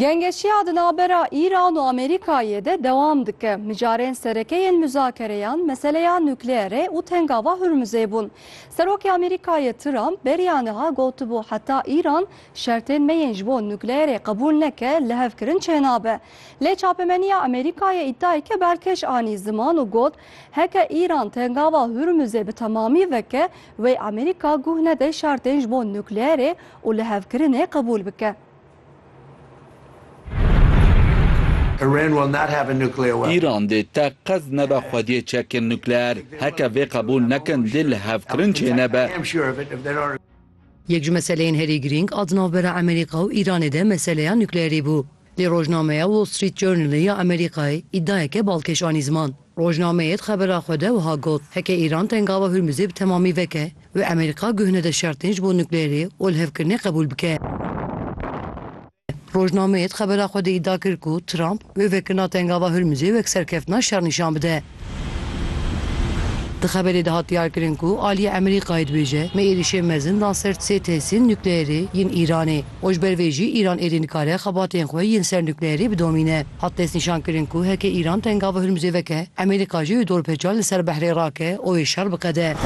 Gengeşiya di navbera Îran û Amerîkayê de dewam dike. Mijarên sereke yên muzakereyan meseleya nukleerê û tengava Hurmuzê bûn. Serokê Amerîkayê Trump beriya niha gotibû heta Îran şertên me yên ji bo nukleerê qebûl neke lihevkirin çênabe. Lê çapemeniya Amerîkayê îdiayeke berkeş anî ziman û got Heke Îran tengava Hurmuzê bi temamî veke, wey Amerîka guh nede şertên ji bo nukleerê û lihevkirinê qebûl bike. Îran dê teqez nebe xwediyê çekên nukleer. Heke vê qebûl nekin, dê lihevkirin çênebe. Yek ji meseleyên herî girîng a di navbera Amerîka û Îranê de meseleya nukleerê bû. Lê rojnameya Wall Street Journal ya Amerîkayê îdiayeke balkêş anî ziman. Rojnameyê di xebera xwe de wiha got, Heke Îran tengava Hurmizê bi temamî veke û Amerîka guh nede şertên ji bo nukleerê û lihevkirinê qebûl bike. Rojnameyê di xebera xwe de îdia kir ku Trump wê vekirina tengava Hurmizê wek serkeftina şer nîşan bide. Di xeberê de hat diyarkirin ku aliyê Emerîkayê dibêje me êrîşê mezin dan ser sê tesîn nukleyerê yên Îranê û ji ber vê jî Îran êdî nikare xebatên xwe yên ser nukleyerê bidomîne. Hat destnîşankirin ku heke Îran tengav û Hirmuzê veke, Emerîka jî wê dorpêçan li ser behrê rake û wê şer biqede.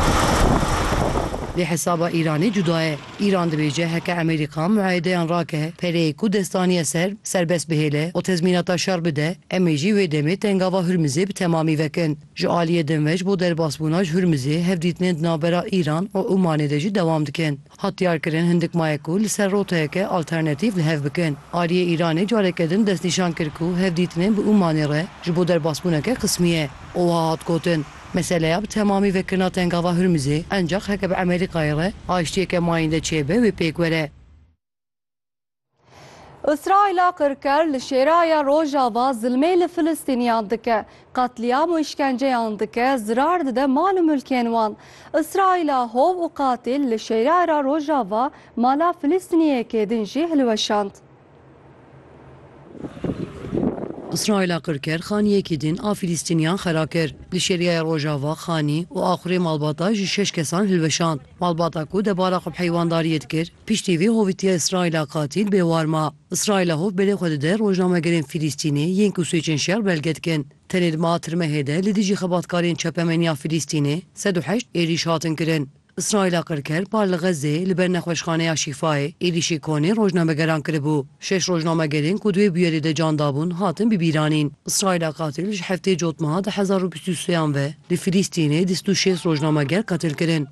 Lê hesaba Îranê cuda ye. Îran dibêje heke Amerîka muayedeyan rake, pereyê ku dest daniye ser, serbest bihêle û tezmînata şer bide, em ê jî wê demê tengava Hurmizê bi temamî vekin. Ji aliyê din ve ji bo derbasbûna ji Hurmizê hevdîtinên di navbera Îran û Omanê de jî dewam dikin. Hat diyarkirin hindik maye ku li ser roteyeke alternatîf li hev bikin. Aliyê Îranê careke din destnîşan kir ku hevdîtinên bi Omanê re ji bo derbasbûneke qismî ye û wiha hat gotin, Meseleya bi temamî vekirina Tengava Hurmizê encax heke bi Emerîkayê re aştiyeke mayînde çêbe wê pêk were. Îsraîla qirker li Şêraya Rojava zilmê li Filistîniyan dike, qetlîam û îşkenceyan dike, zirar dide mal û milkên wan. Îsraîla hov û qatîl li Şêraya Rojava mala Filistîniyekê din jî hilweşand. Îsraîla qir kir xaniyekî din a Fîlîstîniyan xera kir. Di şêriyaya Rojava xanî û axurê malbata ji şeş kesan hilweşand. Malbata ku debara xwe bi heywandariyê dikir, piştî vê hovitiya Îsraîla qatîl bêwar ma. Îsraîla hov berê xwe dide rojnamegerên Fîlîstînê yên ku swêçên şer belge dikin. Tenê di meha tirmehê de li dijî xebatkarên çapemeniya Fîlîstînê sed û heşt êrîş hatin kirin. Îsraîla qirker par li Xezzeyê li ber nexweşxaneya Şîfayê êrîşî konê rojnamegeran kiribû. Şeş rojnamegerên ku di wê bûyerê de can dabûn hatin bibîranîn. Îsraîla qatîl ji heftê cotmeha du hezar û bîst û seyan ve li Filîstînê di sed û şêst rojnameger qetil kirin.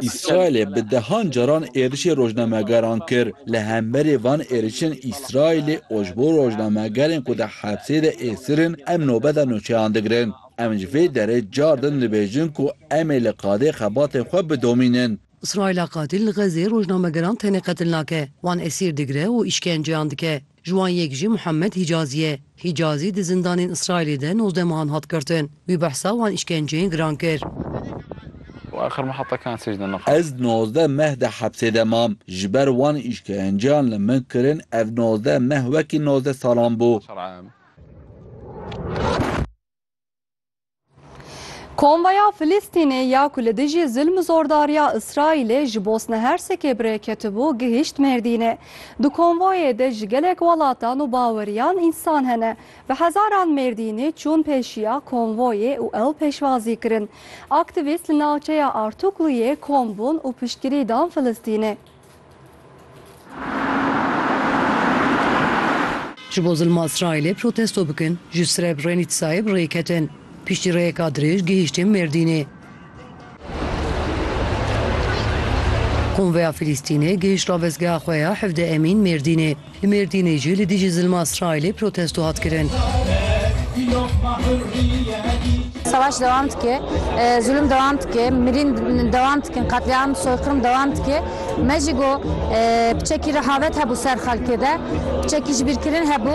Îsraîlê bi dehan caran êrişê rojnamegeran kir. Li hemberî van êrişên Îsraîlê û ji bo rojnamegerên ku di hepsê de êsir in em nobeta nûçeyan digirin. Em ji vê derê car din dibêjin ku em ê li qadê xebatên xwe bidomînin. Îsraîla qatil li Xezê rojnamegeran tenê qetil nake, wan esîr digire û îşkenceyan dike. Ji wan yek jî Muhammed Hîcazî ye. Hîcazî di zindanên Îsraîlê de nozdeh mehan hat girtin. Wî behsa wan îşkenceyên giran kir. Ez nozdeh meh di hepsê de mam. Ji ber wan îşkenceyan li min kirin ev nozdeh meh wekî nozdeh salan bû. Komvaya Filistînê ya ku li dijî zilm û zordariya Îsraîlê ji Bosna Hersekê bi rê ketibû gihîşt Mêrdînê. Di konvoyê de ji gelek welatan û baweriyan însan hene. Bi hezaran Mêrdînî çûn pêşiya konvoyê û ew pêşwazî kirin. Aktîvîst li navçeya Artukluyê kom bûn û piştgirî dan Filistînê. Ji bo zilma Îsraîlê protesto bikin, ji Srebrenîtsayê bi rê ketin. Piştî rêyeka dirêj gihîştin Mêrdînê. Konvoya Filîstînê gihîşt ravestgeha xwe ya Hevde Emîn Mêrdînê. Li Mêrdînê jî li dijî zilma Îsraîlê protesto hat kirin. Savaş dewam dike, zulum dewam dike, mirîn dewam dikin, qetlîam, soyqirm dewam dike. Me jî got bi çekî rehavet hebû ser xelkê de, bi çekî jibîrkirin hebû.